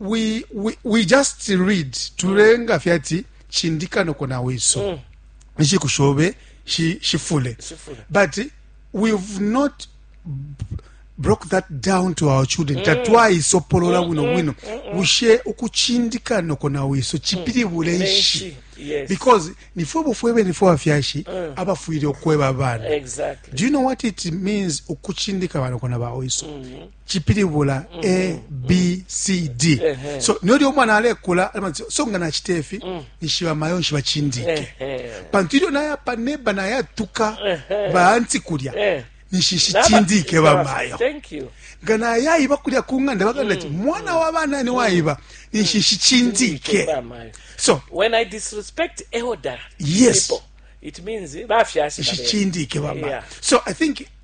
we, we, we just read tulenga fye ati chindika noko na wiso mm. nshiku shobe shifule shi but we've not broke that down to our children mm. tatwaisopolola mm, bwino mm, bwino mm, bushe ukuchindika noko na wiso chipilibule nshi yes. because nifwe bufwe bene fwe bafyashi mm. abafwile okweba abana exactly. do you know what it means ukuchindika banoko na bawiso mm -hmm. cipilibula abcd mm-hmm. so niyo lyo umwana alekula so nga nacita ifi mm. nishiba mayo nshiba cindike pantu ilyo nayapa neba nayatuka baanti kulya eh. nishishi cindike bamayo nga nayayiba kulya ku nganda baganda ti mm. mwana wa bana ni wayiba mm. nishishi cindike so when i disrespect elder yes people, it means bafyasi ishicindike bamayo so i think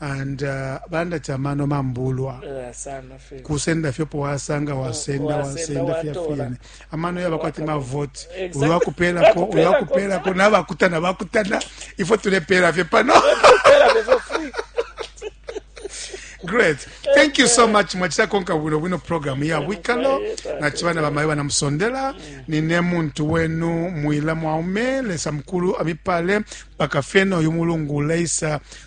and uh, balanda ati amano mambulwa Eh, sana fe kusenda fyopo wasanga wasenda wasenda, wasenda wasenda watora. fyafyene amano yaba kwati mavoti Exactly. ulwakupelako Ulwakupelako. ulwakupelako nabakutana bakutana ifo tulepela fye pano Era bezo free. great thank you so much mwachita konka bwino bwino program ya bwikalo nachibana bamayo banamusondela nine muntu wenu mwila mwaume lesa mukulu amipale mpaka fyena uyu mulungu leisa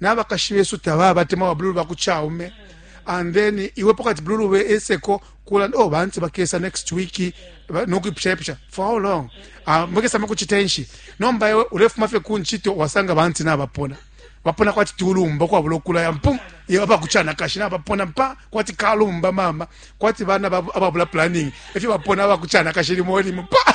nabakashi besu tababa tema ba blue baku chaume and then iwe pokati blue we eseko kula oh bantu bakesa next week nokuipusha ipusha for how long ah mukesa mukuchitenshi nomba iwe ulefuma fe kunchito wasanga bantu nabapona bapona kwati tulumba kwa bulokula ya mpum ye aba kuchana kashi na bapona mpa kwati kalumba mama kwati bana ababula planning efyo bapona aba kuchana kashi limo limo pa